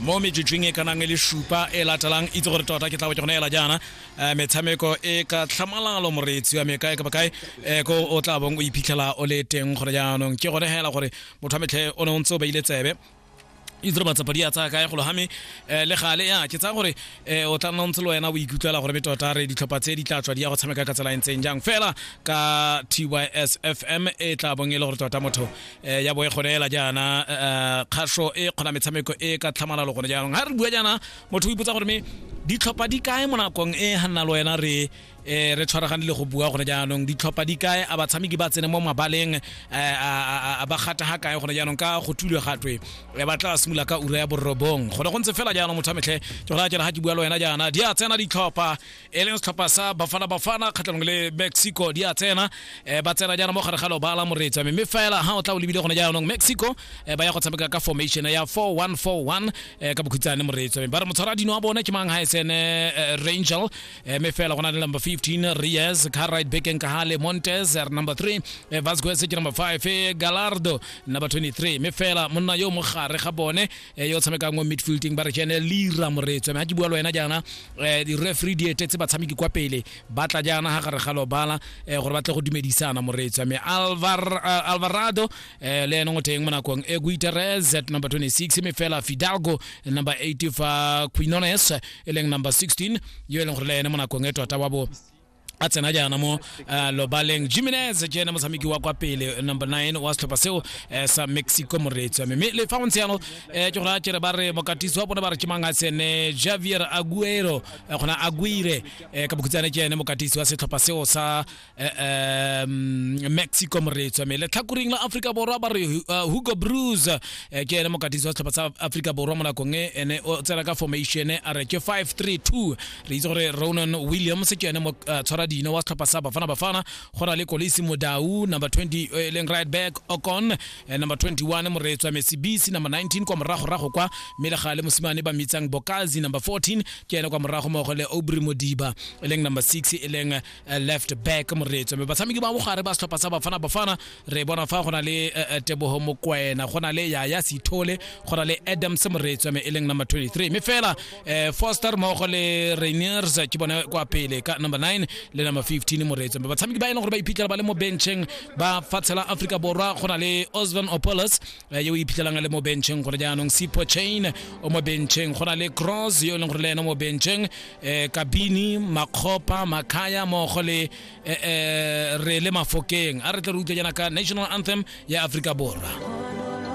Mo metsotsweng e ka nang e le supa e latelang, itse gore tota ke tla bo ke go neela jaana eh, metshameko e ka tlhamalalo moreetsi wa me kae kapa kae eh, ko o tla bong o iphitlhela o le teng gore jaanong ke gone hela gore motho wa metlhe o ne o ntse o beile tsebe itse re matsapa di a tsaya kae golo game um le gale ya ke tsaya gore um o tla nna ntse le wena o ikutlwela gore metota re ditlhopha tse di tla tswa di ya go tshameka ka tsela e ntseng jang fela ka tys fm e tla bong e le gore tota motho eh, ya bo e gone ela jaana eh, kgaso e kgona metshameko e ka tlhamalalo gone jaanong ga re bua jaana motho o ipotsa gore me ditlhopha di kae mo nakong e ga nna le wena re eh, re tshwaragane le go bua gone jaanong ditlhopha di kae a batshameki ba tsene mo mabaleng a ba gata ga kae gone jaanong ka go thulwe gatwe ba tla simolola ka ura ya borobong gone go ntse fela jaanong motho a metlhe ke go raya jana ga ke bua le wena jaana di a tsena ditlhopha e leng setlhopha sa bafana bafana kgatlhanong le mexico di a tsena um ba tsena jaana mo gare ga lobala moreetsa mme mme fela ga o tla o lebile gone jaanong mexico um ba ya go tshameka ka formation ya 4141 um ka bokhutsane moreetsa mme ba re motshwara dino wa bone ke mang ga e sene rangel um mme fela go na le number 15 reyes carrit becken kahale montes r number 3 vasquez ke number 5 galardo number 23 mme fela monna yo mo gare ga bone e yo tshamekang mo midfielding ba re ke ene lira moretswe mme ga ke bua le wena jaana um di-referee di etetse batshameki kwa pele ba tla jaana ga gare ga lobala um gore ba tle go dumedisana moretswe mme Alvar- uh, alvarado um le ene go teng mo nakong e guiteres at number 26 mme fela fidalgo number 8 fa quinones e leng number 16 yo e leng gore le ene mo nakong e tota wa bo a tsena jaana mo uh, lobaleng jimenez ke ena motshameki wa kwa pele number 9 wa setlhopha seo uh, sa mexico moreetsi wa me mme le fa go ntse yalo uh, ke gore a kere ba re mokatisi wa bone ba re ke mang a tsene javier aguero uh, gona aguire uh, ka bokhutsane ke ene mokatisi wa setlhopha seo sa uh, um, mexico moreetsi wa me letlhakoring la aforika borwa ba re uh, hugo brus uh, ke ene mokatisi wa setlhopha sa aforika borwa mo nakong e ene o tsena ka formation a re ke 532 re itse gore ronan williams ke yone mo- eh, tshwara dino wa setlhopha sa bafana bafana go na le kolisi modau number 20 eh, e leng right back ocon eh, number 21 moretswa mesibisi number 19 kwa moragorago kwa mme le ga le mosimane ba mitsang bokazi number 14 ke yone kwa morago mmogo le obry modiba e leng number 6 e leng eh, left back moretswa mme batshameki ba bogare ba setlhopha sa bafana bafana re bona fa go na le eh, eh, tebogo mokwena go na le yaya sithole go na le adams moretswa me e leng number 23 mme fela eh, foster mmogo le rainiers ke bone kwa pele ka number 9 le number 15 moretswa mme batshameki ba e leng gore ba iphitlhela ba le mo bencheng ba fatshe la aforika borwa go na le osvan opolos eh, yo o iphitlhelang a le mo bencheng gore jaanong sipo chain o mo bencheng go na le cross yo e leng gore le ena mo bencheng eh, kabini makgopa makaya mmogo le eh, eh, re le mafokeng a re tle re utlwe jaana ka national anthem ya aforika borwa